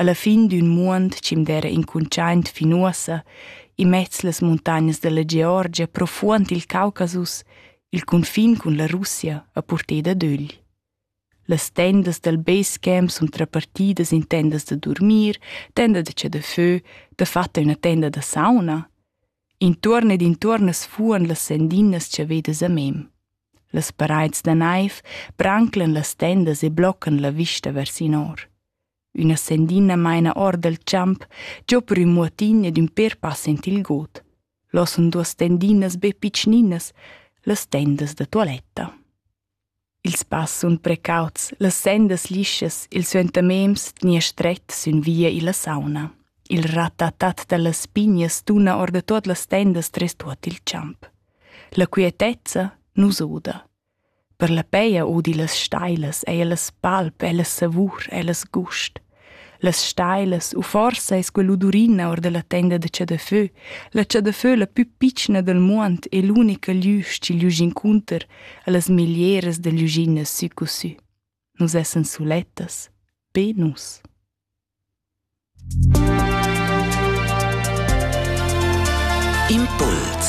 alla fin d'ün muond chi'm d'era incuntschaint fin uossa, immez las muntagnas della Georgia, profuond il Caucasus, il cunfin cun la Russia a purter dad ögl. Las tendas dal basecamp sun trapartidas in tendas da durmir, tenda da che da fö, dafatta üna tenda da sauna. Intuorn ed intuorn as fuan las sendinas chavedas a mem. Las paraids da naiv branclan las tendas e bloccan la vista vers in or. Üna sendina maina or dal champ giò per ün muotin ed ün pêr pass aint il god. Là sun duos stendinas be pitschninas, las tendas da tualetta. Ils pass sun precauts, las sendas lischas, il suentamems tgnia stret sün via illa sauna. Il ratatat da las pignas tuna or da tuot las tendas tres tuot il champ. La quietezza nu s'oda. Per la peia udi las stailas eir las palp e la savur e las gust. Las stailas, u forsa es quell'udurina our da la tenda da chadafö, la chadafö la pü pitschna dal muond e l'unica glüsch chi gliusch incunter a las miglieras da gliuschinnas sü cu sü. Nus essan sulettas, be nus. Impuls